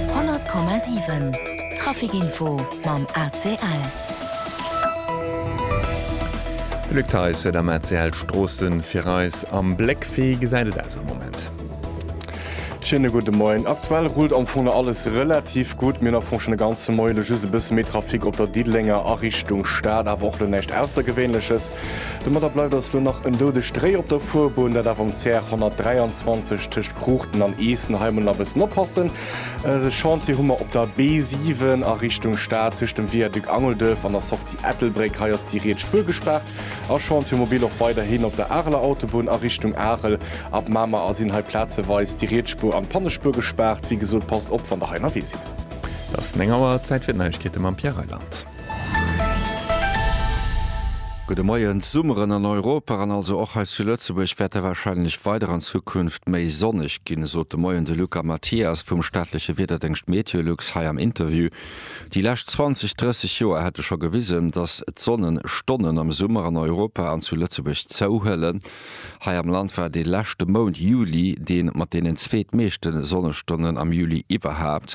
100,7 Trafic Info mam ACL. De Luc Theis huet am ACL d'Stroosse fir eis am Bléck. Wéi gesäit et aus am Moment? Schéine gudde Moien. Aktuell rullt am Fong nach alles relativ gutt. Mir hunn am Fong schonn de ganze Moie lo just e bësse méi Trafic op der Diddelenger a Richtung Stad, awer och lo näischt Aussergewéinleches. Domadder bleift eis lo nach en doudegt Réi op der Fuerbunn, dat awer um CR 123. Tëscht Cruchten an Eessen, hei emol nach e bëssen oppassen, e Chantier hu mer op der B7 a Richtung Stad, tëscht dem Viaduc Angelduerf an der Sortie Ettelbréck, hei ass déi riets Spuer gespaart. A Chantier mobil och weiderhin op der Areler Autobunn a Richtung Arel. Ab Mamer a sinn hei plazeweis déi riets Spuer an d'Pannespuer gespaart. Wéi gesot, passt op, wann Der hei ënnerwee sidd. Et ass 9 Auer, Zäit fir d'Neiegkeete mam Pierre Reyland. Gudde Moien. D'Summeren an Europa an also och hei zu Lëtzebuerg wäerte warscheinlech weider an Zukunft méi sonneg ginn, sot de Moien de Luca Mathias vum staatleche Wiederdéngscht Meteolux hei am Interview. Déi lescht 20, 30 Joer hätte scho gewisen, datt d'Sonnenstonnen am Summer an Europa an zu Lëtzebuerg zouhuelen. Hei am Land war de leschte Mount Juli dee mat deenen zweetmeeschte Sonnestonnen am Juli iwwerhaapt.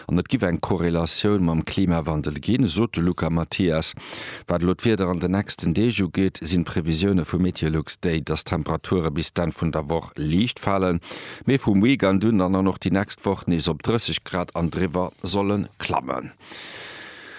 An et giff eng Korrelatioun mam Klimawandel ginn, sot de Luca Mathias. Wat elo d'Wieder an den nächsten Deeg ugeet, sinn d'Previsioune vu Meteolux déi, dass d'Temperature bis d'Enn vun der Woch liicht falen, mee vum Weekend un dann an och déi nächst Woch nees op 30 Grad an driwwer solle klammen.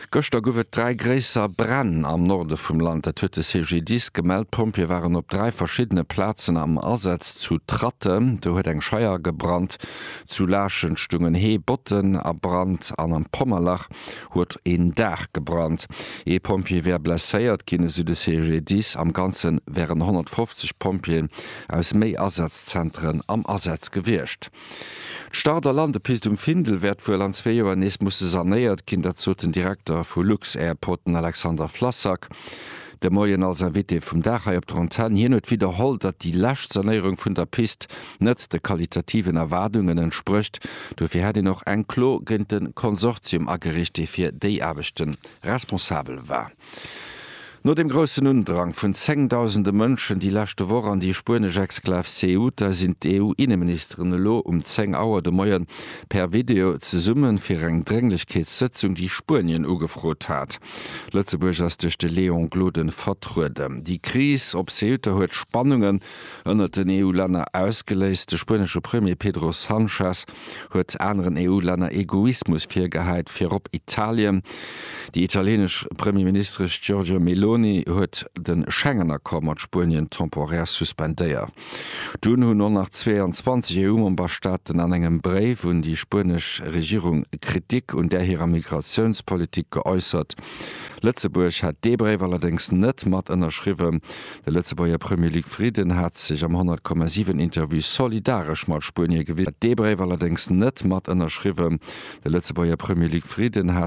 Gëschter gouf et dräi gréisser Bränn am Norde vum Land. Dat huet de CGDIS gemellt. D'Pompjeeë waren op dräi verschiddene Plazen am Asaz. Zu Tratten, do huet eng Scheier gebrannt, zu Laaschent stungen Hee Botten a Brand an am Pommerlach huet een Daach gebrannt. Ee Pompjee wär blesséiert ginn, esou de CGDIS. Am Ganze wären 150 Pompjeeën aus méi Asazzentere am Asaz gewiescht. D'Start a Landepist um Findel wäert wuel an zwee Joer nees musse sanéiert ginn. Dat sot den Direkter vu Lux-Airport, den Alexander Flassak, de Moien als Invité vum Dag hei op der Antenn. Hien huet widderholl, datt déi lescht Sanéierung vun der Pist net de qualitativen Erwaardungen entsprécht. Dofir hätt een och eng Klo géint de Konsortium agereecht, dee fir déi Aarbechte responsabel war. No dem groussen Undrang vun zéngdausende Mënschen déi leschte Woch an déi spuenesch Exklav Ceuta sinn d'EU-Inneministeren elo um 10 Auer de Moien per Video zesumme fir eng Drénglechkeetssëtzung, déi Spuenien ugefrot hat. Lëtzebuerg ass duerch de Léon Gloden vertrueden. Déi Kris op Ceuta huet Spannungen ënnert den EU-Länner ausgeléist. De spuenesche Premier Pedro Sanchez huet aneren EU-Länner Egoismus virgehäit, virop Italien. Déi italienesch Premierministesch Giorgia Meloni huet de Schengen-Accord mat Spuenien temporär suspendéiert. Dunn hunn och nach 22 EU-Memberstaaten an engem Bréif un déi spuenesch Regierung Kritik un där hirer Migratiounspolitik geäussert. Lëtzebuerg hat dee Bréif allerdéngs net mat ënnerschriwwen, De Lëtzebuerger Premier Luc Frieden hat sech am 100,7 Interview solidaresch mat Spuenie gewisen, hat dee Bréif allerdéngs net mat ënnerschriwwen. De Lëtzebuerger Premier Luc Frieden hat.